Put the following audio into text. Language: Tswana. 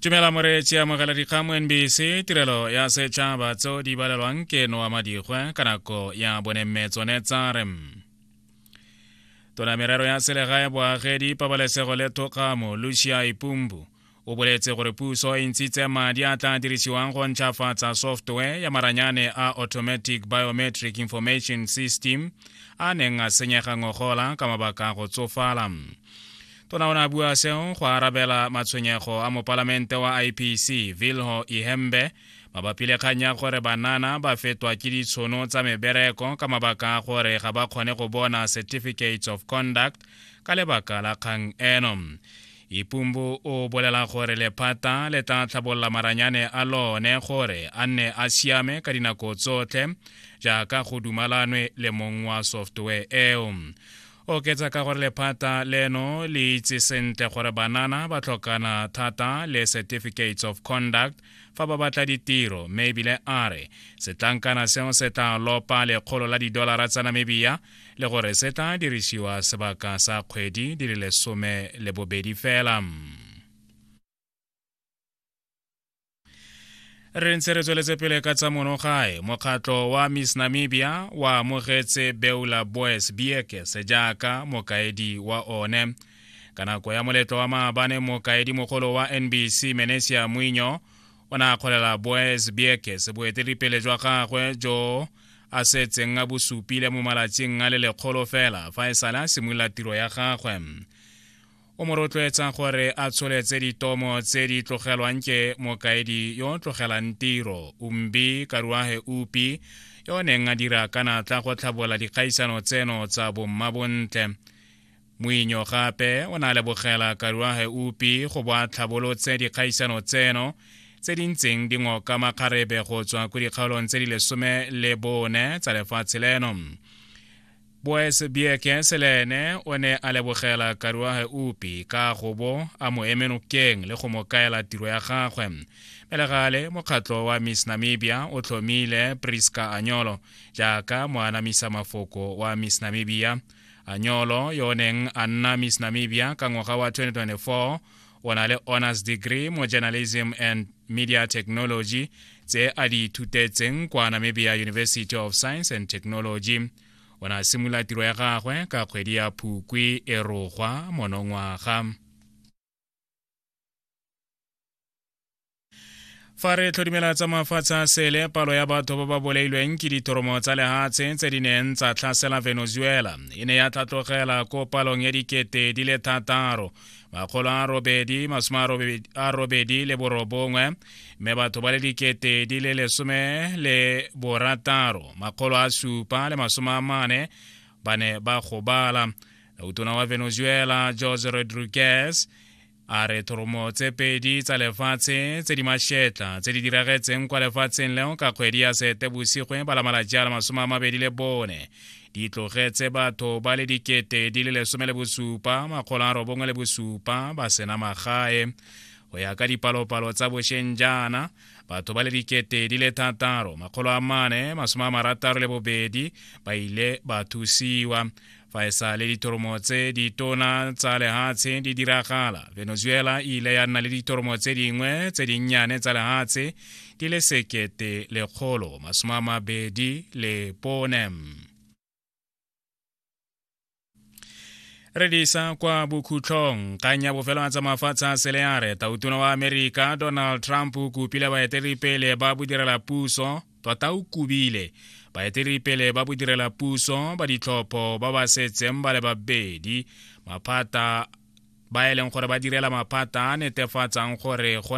tumela moreetsi amogela dikgang mo nbc tirelo ya setšhaba tseo di balelwang ke noa madigwe ka nako ya bonemme tsone tsa re tona merero ya selegae boagedi pabalesego le thokgamo lucia ipumbu o boletse gore puso e ntshitse madi a tla dirisiwang go ntšhafatsa software ya maranyane a automatic biometric information system a neng a senyega ngogola ka mabaka a go tsofala tona o ne a bua seo go arabela matshwenyego a mopalamente wa ipc vilho ihembe mabapi le kgang ya gore banana ba fetwa ke ditshono tsa mebereko ka mabaka a gore ga ba kgone go bona certificates of conduct ka lebaka la kgang eno ipumbu o bolela gore lephata le tla tlhabolola maranyane a lone gore a nne a siame ka dinako tsotlhe jaaka go dumalanwe le mong wa software eo oketsa ka gore lephata leno le itse sentle gore banana ba tlhokana thata le certificates of conduct fa ba batla ditiro mme ebile a re setlankana seo se tla lopa lekgolo la didolara tsa namibia le gore se tla dirisiwa sebaka sa kgwedi di le lesome le bobedi fela re ntse re tsweletse pele ka tsa monogae mokgatlho wa miss namibia wa amogetse beula boes biekes jaaka mokaedi wa one ka nako ya moletlo wa maabane mokaedi mogolo wa nbc menesia moinyo o ne a kgolela boes biekes boeteledipele jwa gagwe jo a setseng a bosupile mo malatsing a le lekgolo fela fa e sale a simolola tiro ya gagwe o mo rotloetsang gore a tsholetse ditomo tse di tlogelwang ke mokaedi yo o tlogelang tiro umbi karuahe upi yo o neng a dira ka natla go tlhabola dikgaisano tseno tsa bommabontle moinyo gape o ne a lebogela karuahe upi go bo a tlhabolotse dikgaisano tseno tse di ntseng di ngoka makgarebe go tswa ko dikgaolong tse di lesome le bone tsa lefatshe leno Boes Bieke Selene o ne a lebogela Karuage Upi ka go bo a mo eme nokeng le go mo kaela tiro ya gagwe. Pele gale, mokgatlho wa Miss Namibia o tlhomile Prisca Anyolo jaaka moanamisa mafoko wa Miss Namibia. Anyolo yo o neng a nna Miss Namibia ka ngwaga wa 2024 o na le honors degree mo journalism and media technology tse a di ithutetseng kwa namibia university of science and technology o ne a simolola tiro ya gagwe ka kgwedi ya phukwi e rogwa monongwaga fa re tlhodimela tsa mafatshe a sele palo ya batho ba ba bolailweng ke dithoromo tsa lehatshe tse di neng tsa tlhasela venezuela e ne ya tlhatlogela ko palong ya dikete di le thataro makgolo a robedi masome a robedi le borobongwe mme batho ba le dikete di le lesome le borataro makgolo a supa le masome a mane ba ne ba gobala utona wa venezuela jose rodriguez a re thoromo tse pedi tsa lefatshe tse di mašetla tse di diragetseng kwa lefatsheng leo ka kgwedi ya seetebosigwe ba lamalatši a la masome a mabedi le bone di tlogetse batho ba le dikete di le lesome le bosupa makgolo a robongwe le bosupa ba sena magae go ya ka dipalopalo tsa bošeng jaana batho ba le dikete di le thataro makgolo a mane masome a marataro le bobedi ba ile ba thusiwa fa e sa le ditoromo tse ditona tsa lehatshe di diragala venezuela e ile ya nna le ditoromo tse dingwe tse dinnyane tsa lehatshe di le sekete lekgolo masome a mabedi le pone re disa kwa bokhutlhong kgang ya bofelo tsa mafatshe a seleare tautona wa amerika donald trump o kopile baeteledipele ba bodirela puso tota o kubile baeteledipele ba bodirelapuso ba ditlhopho ba ba setseng ba le babedi maphata ba e leng gore ba direla maphata a netefatsang gore go